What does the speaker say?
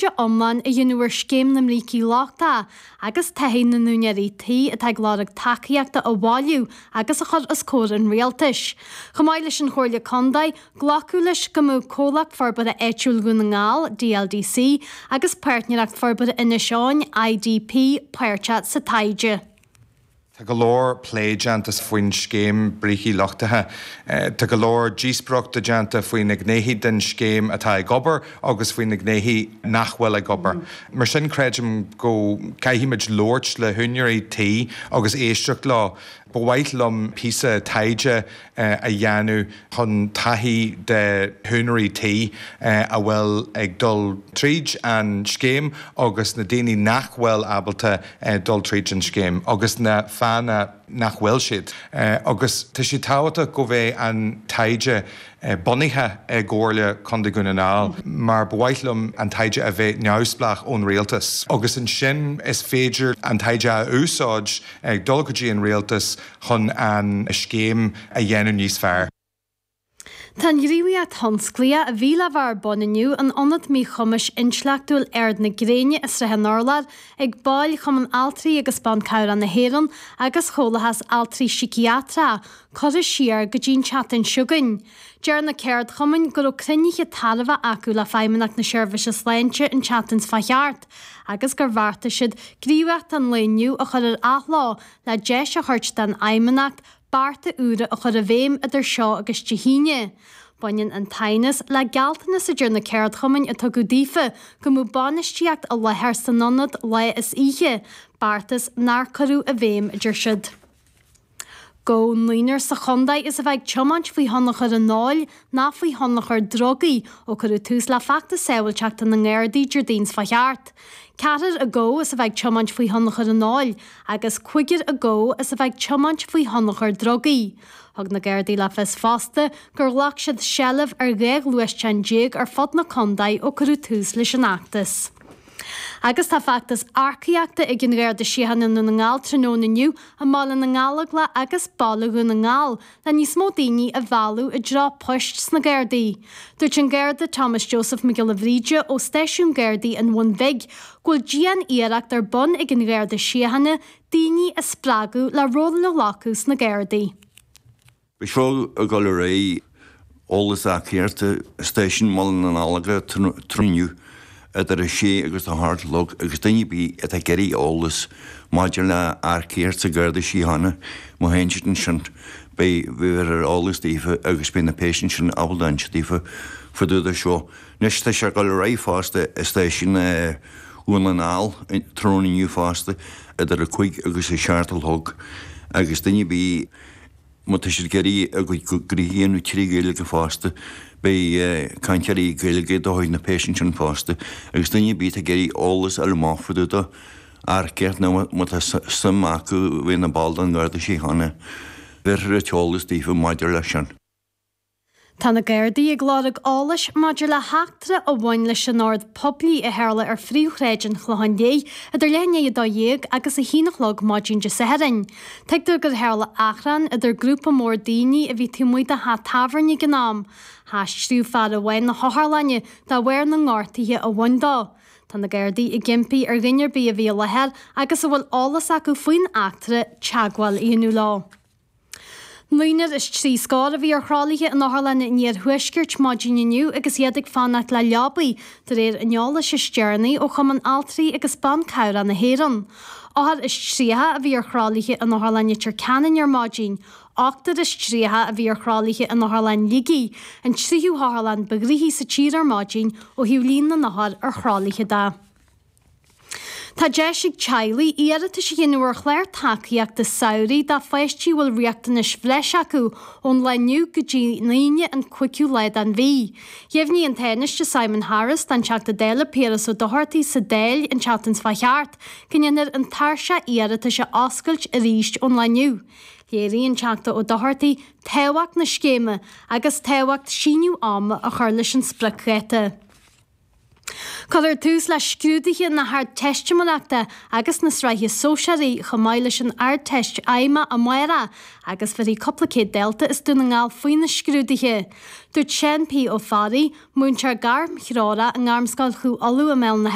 Scrúdú iomlán a dhéanamh ar scéim na mbrící lochtacha agus taithí na n-úinéirí tí atá ag lorg tacaíochta a bhailiú agus a chur os comhair an rialtais. Chomh maith leis an Chomhairle Contae, glacadh leis go mbeadh Comhlacht Forbartha Áitiúil Dhún na nGall, DLDC, agus Páirtnéireacht Forbartha Inis Eoghain, IDP, páirteach sa taighde. Tá go leor plé déanta faoin scéim brící lochtaithe. Tá go leor díospóireachta déanta faoi na gnéithe den scéim atá ag obair agus faoi na gnéithe nach bhfuil ag obair. Mar sin creidim go gcaithfimid labhairt le húinéirí tí agus éisteacht leo. Ba mhaith liom píosa taighde a dhéanamh chun taithí de húinéirí tí a bhfuil ag dul tríd an scéim agus na daoine nach bhfuil ábalta dul tríd an scéim agus na fáthanna nach bhfuil siad agus tá sé tábhachtach go mbeidh an taighde bunaithe i gComhairle Contae Dhún na nGall mar ba mhaith liom an taighde a bheith neamhspleách ón Rialtas agus ansin is féidir an taighde a úsáid ag dul go dtí an Rialtas chun an scéim a dhéanamh níos fearr. Tá an ghníomhaíocht thionsclaíoch, a bhí le bheith ar bun inniu, in ionad míchumais intleachtúil Ard na Gréine i Srath an Urláir, ag baill Chumann Altraí agus Ban Cabhrach na hÉireann agus Chomhlachas Altraí Síciatrach, curtha siar go dtí'n tseachtain seo chugainn. Deir na ceardchumainn go raibh cruinnithe tairbheacha acu le Feidhmeannacht na Seirbhíse Sláinte an tseachtain seo a chuaigh thart agus gur bheartaigh siad gníomhaíocht an lae inniu a chur ar athlá le deis a thabhairt don Fheidhmeannacht bearta úra a chur i bhfeidhm idir seo agus Dé hAoine. Baineann an t-aighneas le gealltanas a deir na ceardchumainn a tugadh daofa go mbeadh bainistíocht i láthair san ionad lá is oíche, beartas nár cuireadh i bhfeidhm, a deir siad. Gabhadh naonúr sa chontae as a bheith ag tiomáint faoi thionchar an óil ná faoi thionchar drugaí ó cuireadh tús le feachtas sábháilteachta na nGardaí Déardaoin seo a chuaigh thart, ceathrar acu as a bheith ag tiomáint faoi thionchar an óil agus cúigear acu as a bheith ag tiomáint faoi thionchar drugaí. Thug na Gardaí le fios fosta gur ghlac siad seilbh ar dhá ghluaisteán déag ar fud na condae ó cuireadh tús leis an fheachtas. Agus tá feachtas earcaíochta ag an Gharda Síochána i nDún na nGall tráthnóna inniu, i mBaile na nGallóglach agus Baile Dhún na nGall, le níos mó daoine a mhealladh i dtreo poist sna Gardaí. Dúirt an Garda Thomas Joseph Mac Giolla Bhríde ó stáisiún Gardaí an Bhun Bhig go bhfuil dian-iarracht ar bun ag an Gharda Síochána daoine a spreagadh le rólanna a ghlacadh sna Gardaí. B'sheo ag dul ar aghaidh. Eolas earcaíochta, Stáisiún Bhaile na nGallóglach tráthnóna inniu idir 6 agus 8 a chlog agus duine ar bith atá ag iarraidh eolas maidir le hearcaíocht sa Gharda Síochána, má théann siad ansin beidh bhéarfar eolas daofa agus beidh na péas ansin ábalta insint daofa fá dtaobh dó seo. Anois tá sé ag dul ar aghaidh fosta i stáisiún Dhún na nGall tráthnóna inniu fosta idir 5 agus 7 a chlog agus duine ar bith Má tá siad ag iarraidh a gcuid gnóthaí a dhéanamh trí Ghaeilge fosta, beidh cainteoirí Gaeilge de chuid na bpéas ansin fosta, agus duine ar bith atá ag iarraidh eolas a fháil amach fá dtaobh dó earcaíocht nó má tá suim acu a bheith ina ball den Gharda Síochána, bhéarfar an t-eolas daofa maidir leis sin. Tá na Gardaí ag lorg eolais maidir le heachtra a bhain leis an ord poiblí a tharla ar phríomhshráid an Chlocháin Léith idir leath i ndiaidh a dó dhéag agus a haon a chlog maidin Dé Sathairn. Tuigtear gur tharla achrann idir grúpa mór daoine a bhí taobh amuigh de theach tábhairne ag an am. Haistríodh fear amháin na hotharlainne de bharr na ngortuithe a bhain dó. Tá na Gardaí ag impí ar dhuine ar bith a bhí i láthair agus a bhfuil eolas acu faoin eachtra teagmháil a dhéanamh leo. Naonar is trí scór a bhí ar thralaithe in otharlanna an Iarthuaiscirt maidin inniu agus iad ag fanacht le leabaí, de réir an eolais is deireanaí ó Chumann Altraí agus Ban Cabhrach na hÉireann. Othar is tríocha a bhí ar thralaithe in Otharlann Leitir Ceanainn ar maidin. Ochtar is tríocha a bhí ar thralaithe in Otharlann Shligigh, an tríú hotharlann ba ghnóthaí sa tír ar maidin ó thaobh líon na n-othar ar thralaithe de. Tá deis ag teaghlaigh iarratais a dhéanamh ar Chlár Tacaíochta Samhraidh dá bpáistí a bhfuil riachtanais bhreise acu ón lá inniu go dtí an Aoine an 5ú lá den mhí. Dheimhnigh an Tánaiste Simon Harris don Teachta Dála Piaras Ó Dochartaigh sa Dáil an tseachtain seo thart go ndéanfar an tairseach iarratais a oscailt arís ón lá inniu. Léirigh an Teachta Ó Dochartaigh tábhacht na scéime agus tábhacht síneadh ama a chur leis an spriocdháta. Cuirfear tús le scrúduithe na hArdteistiméireachta agus na Sraithe Sóisearaí chomh maith leis an Ardteist Fheidhmeach amárach agus bhéarfaidh cúpla céad dalta as Dún na nGall faoi na scrúduithe. Dúirt Seán P. Ó Fearraigh, múinteoir gairmthreorach i nGairmscoil Chú Uladh i mBéal an Átha.